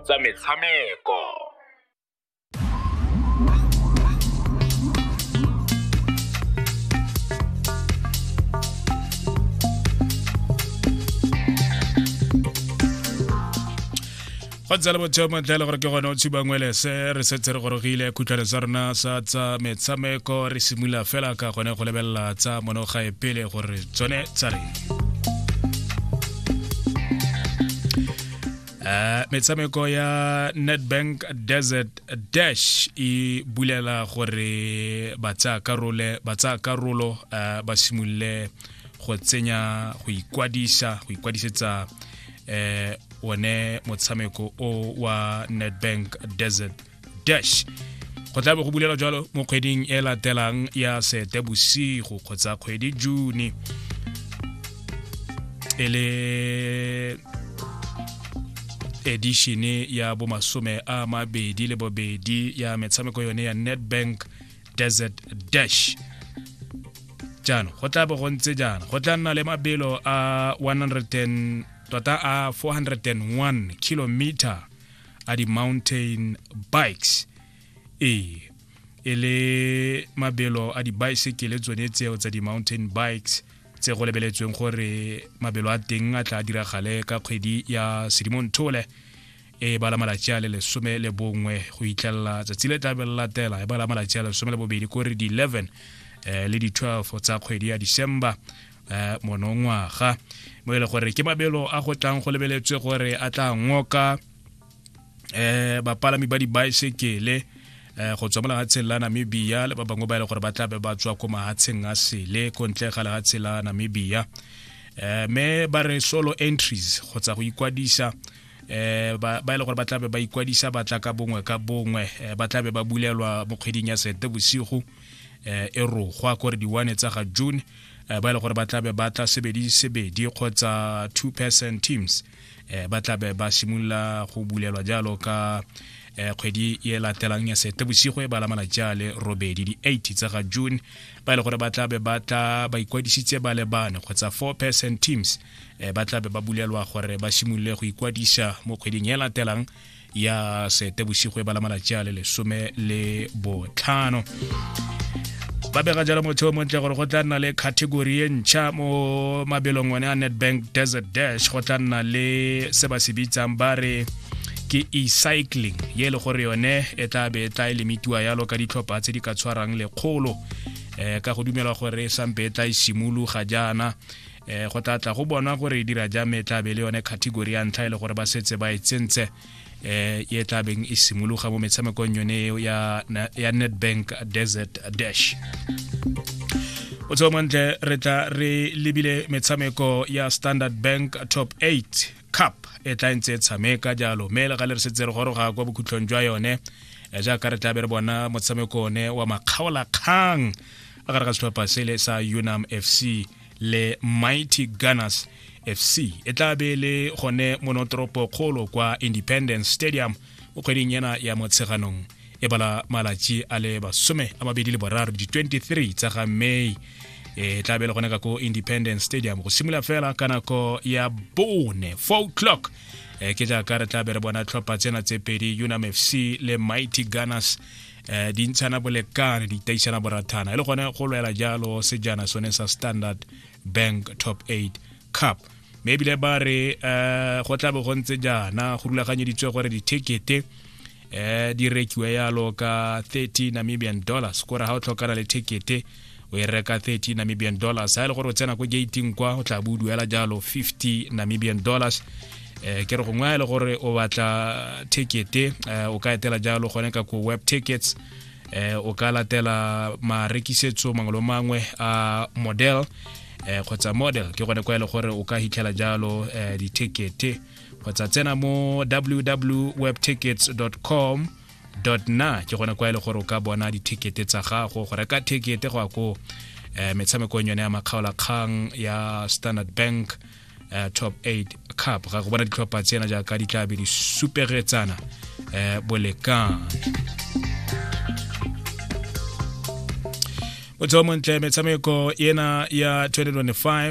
tsa metshameko go tsala botsheo matlhele gore ke gone o tshiba ngwelese re setse re gorogile khutlhwane sa rona sa tsa metshameko re simolola fela ka gone go lebelela tsa monogae pele gore tsone tsa reng Uh, metshameko ya netbank desert dash e bulela gore ba tsaya karolo uh, ba simolole go tsenya go ikwadisa go ikwadisetsa um one motshameko o wa netbank desert dash go tla be go bulela jalo mo kgweding e latelang ya sete bosigo kgotsa kgwedi june e le edishene ya bomasome a mabedi le bobedi ya metshameko yone ya netbank desert dash jaanong go tla bo go ntse jaana go tla nna le mabelo a 100 tota a 401 kilometer a di-mountain bikes ee e le mabelo a dibaesekele tsone tseo tsa di-mountain bikes tse go lebeletsweng gore mabelo a teng a tla diragale ka kgwedi ya sedimonthole e bala malatsi a le lesome le bongwe go itlelela tsatsi le tlabe le latela e bala malatsi a lesome le bobedi kore di-11 um eh, le di-12 tsa kgwedi ya december eh, monongwaga mo e le gore ke mabelo a go tlang go lebeletswe gore a tla ngoka eh bapalami ba dibaesekele eh go tswa mo lefatsheng la namibia le ba bangwe ba e le gore ba tlabe ba tswa ko mahatsheng a sele ko ntle ga lefatshe la namibia eh me ba re solo entries kgotsa go ikwadisa eh ba e le gore ba tlabe ba ikwadisa ba tla ka bongwe ka bongwe eh, ba tlabe ba bulelwa mo kgweding ya sete bosigo eh e rogwa kore di-one tsa ga june eh, ba e le gore ba tlabe ba tla sebedi sebedi kgotsa two person teams eh, ba tlabe ba simolola go bulelwa jalo ka eh, kgwedi e latelang ya sete bosigo e bala malatsi a le robedi di-8 tsa ga june ba e le gore ba tlabe ba tla ba ikwadisitse ba le bane kgotsa four person teams eh, ba tlabe ba bulelwa gore ba simolole go ikwadisa mo kgweding e latelang ya seetebosigo e bala malatsi a le lesome le botlhano ba bega jalo motho o montle gore go tla nna le category e ntšha mo mabelong one a netbank desert dash go tla nna le se ba se bitsang ba re ke e-cycling ye e le gore yone e tla be e tla e lemitiwa yalo ka ditlhopha tse di ka tshwarang lekgolo um ka go dumelwa gore e sampe e tla e simologa jaana um go tla tla go bonwa gore e dira jang me e tlabe le yone category ya ntlha e le gore ba setse ba e tsentse um e tlabeng e simologa mo metshamekong yone eo ya netbank desert dash o tseo montle re tla re lebile metshameko ya standard bank top 8 cup e tla ntse e tshameka jalo mme le ga le re setse re goroga kwa bokhutlhong jwa yone eh, jaaka re tla be re bona motshameko one wa makgaolakgang a gare ga setlhopha sele sa unam fc le mighty gunners fc e tla be le gone monotoropo kgolo kwa independence stadium mo kgweding ena ya motsheganong e bala malatši a le basome a mabedi le boraro di-23 tsa ga may e tla be le gone ka ko independence stadium go simolola fela ka nako ya bone four o'clock e ke jaaka re tla be re bona tlhopha tsena tse pedi unam fc le mighty gunners fc eh di ntshana bolekane di taisana borathana e le gone go lwela jalo sejana sone sa standard bank top 8 cup mme ebile ba re um go tlabe go ntse jaana go rulaganyeditswe gore dithekete um di rekiwe yalo ka 30 namibian dollars kore ga o tlhokana le thekete o e reka 30 namibian dollars ga e le gore o tsena ko gating kwa o tla bo o duela jalo 50 namibian dollars eh ke re gongwe a e le gore o batla tickete eh, o ka etela jalo gone ka ko web tickets eh o ka latela marekisetso mangwe le mangwe a model eh kgotsa model ke gone kwa e le gore o ka hitlhela jalo eh, ditekete kgotsa tsena mo www.webtickets.com na ke gone kwa e le gore o ka bona dithekete tsa gago go reka thekete go ya ko um eh, metshamekong yone ya makgaolakgang ya standard bank uh, top 8 cup ga go bona ditlhopha tsena jaaka di tlabe di superetsana um eh, bolekang motho o montle metshameko ena ya 2025